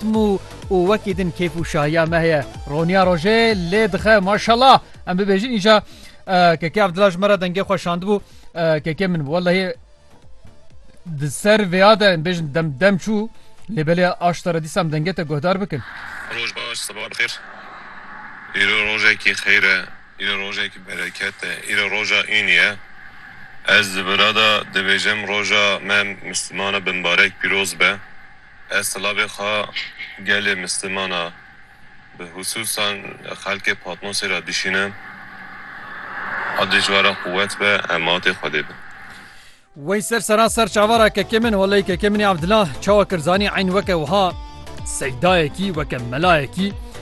Mû û wekî din kêf û şahiya me heye. Roniya rojê lê dixe maşallah em bibêjin îja Keke Evdila ji me re dengê xwe şandibû Keke min bû wellehî di ser vêya de em bêjin dem dem çû lê belê aşta re dîsa em dengê te guhdar bikin. Roj baş siba bi xêr. Îro rojekî xêr e, îro rojekî bereket e, îro roja înî ye. Ez di vira de dibêjim roja me Mislmana binbarek pîroz be. Ez silavê xwe gelê misliman a bi hususan xelkê Patmosê re dişînim. Adê ji we re quwet be, em matê Xwedê bin. Wey ser seran ser çavara kekê min holeyî kekê min ê Abdullah çawa kir zanî eyn weke wiha seydayekî weke melayekî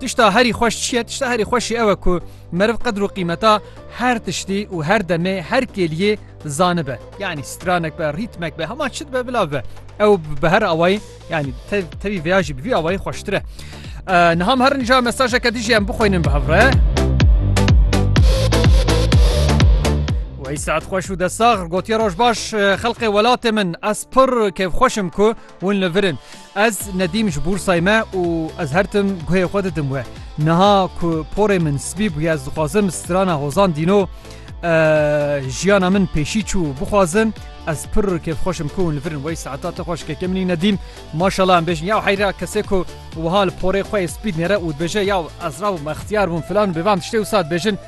Tişta herî xweş çi ye? Tişta herî xweş jî ew e ku meriv qedr û qîmeta her tiştî û her demê her kêliyê zanibe. Yanî stranek be, rîtmek be, hema çi dibe bila bibe. Ew bi her awayî yanî tevî vêya jî bi vî awayî xweştir e. Niham herin ja mesajeke dijî em bixwînin bi hev re. Wey saet xweş û de sax gotiye roj baş xelqê welatê min ez pir kêfxweşim ku Hûn li vir in. Ez nedîm ji bûrsay me û ez her tim guhê xwe didim we. Niha ku porê min spî bûye ez dixwazim strana hozan dîno jiyana min pêşî çû bixwazim ez pir kêfxweşim ku hûn li virin wey saeta te xweş keke minî nedîm maşala em bêjin ya heyra kesê ku wiha li porê xwe spîd nêre û dibêje ya ez rabûm extiyar bûm filan bêvan tiştê û sat bêjin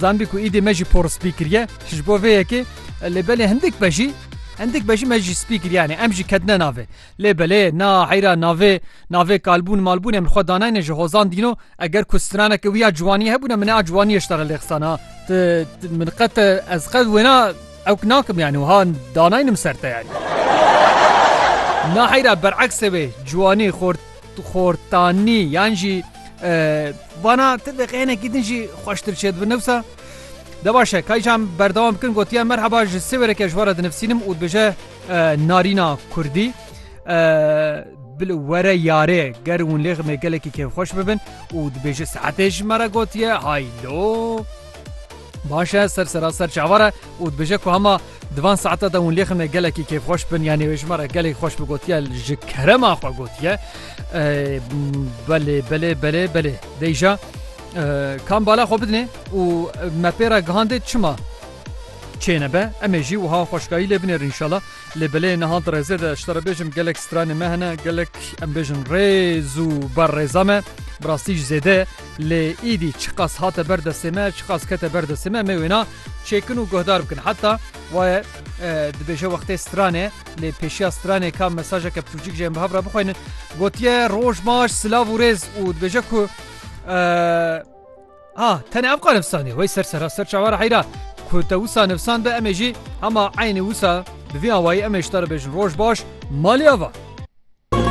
Zanibî ku îdî me jî por spî kiriye ji bo vê yekê lê belê hindik be jî hindik be jî me jî spî kiriye yanê em jî ketine navê lê belê na heyra navê navê kalbûn malbûnê min xwe danayne ji hozan dîno eger ku straneke wî ya ciwaniyê hebûne min a ciwaniyê ji te re lê qisa na ti min qet ez qet wêna ewk nakim yanî wiha danaynim ser te yanî na heyra bereksê wê ciwanî xort Xortanî yan jî vana ti deqeyenekî din jî xweştir çêdibin newsa. De baş e kaycan berdewam bikin gotiye merheba ji sêwêreke ji wara dinivsînim û dibêje narîna kurdî bil were yarê ger hûn lê ximê gelekî kêfxweş bibin û dibêje saetê ji me re gotiye haylo. Baş e ser seraser çavar e û dibêje ku hema Di van saete de hûn lêxine gelekî kêfxweş bin yanî wê ji me re gelekî xweş bi gotiye ji kerema xwe gotiye belê belê belê belê deyja kam bala xwe bidinê û me pê re gihandê çima çêne be em ê jî wiha xweşkayî lê binêrin inşallah lê belê niha di rêzê de ji te re bêjim gelek stranê me hene gelek em bêjin rêz û ber rêza me bi rastî ji zêde lê îdî çiqas hate ber destê me çiqas kete ber destê me me wêna Çêkin û guhdar bikin. Heta waye dibêje wextê stranê lê pêşiya stranê ka mesajeke pirtûcîk ji em bi hev re bixwînin. Gotiye roj baş silav û rêz û dibêje ku ha tenê ev qanifsanî wey ser sera ser çawa re heyra ku te wisa nifsan be emê jî hema eynî wisa bi vî awayî emê ji te re bêjin roj baş maliya va.